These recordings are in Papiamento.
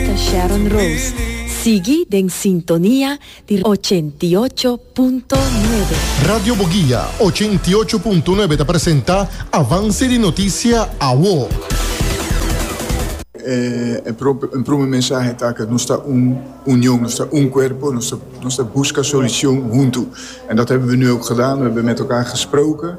ta Sharon Rose. Sigui den sintonia di ochenta i ocho punto nuebe. Radio Boguia ochenta i ocho punto nuebe ta presenta Avance di Noticia Awo. E prume mensahe ta cu nos ta un union, nos ta un cuerpo, nos ta busca solucion huntu. En dat hebben we nu ook gedaan, we hebben met elkaar gesproken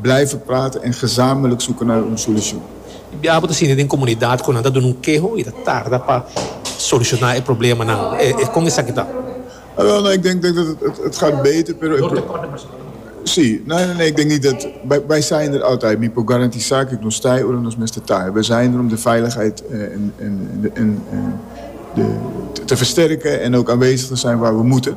Blijven praten en gezamenlijk zoeken naar un solucion. Di biaha bo ta sinti den comunidad cu nan ta duna un keho y ta tarda pa soluciona e problemanan. E con esaki ta? Awel, no, ik denk dat het gaat beter, pero e pro. Door tekort den personal tambe. Sí, no, no, no, ik denk niet dat, wij zijn er altijd, mi por garantisa cu nos ta e ora nos mester ta. We zijn er om de veiligheid en de te versterken en ook aanwezig te zijn waar we moeten.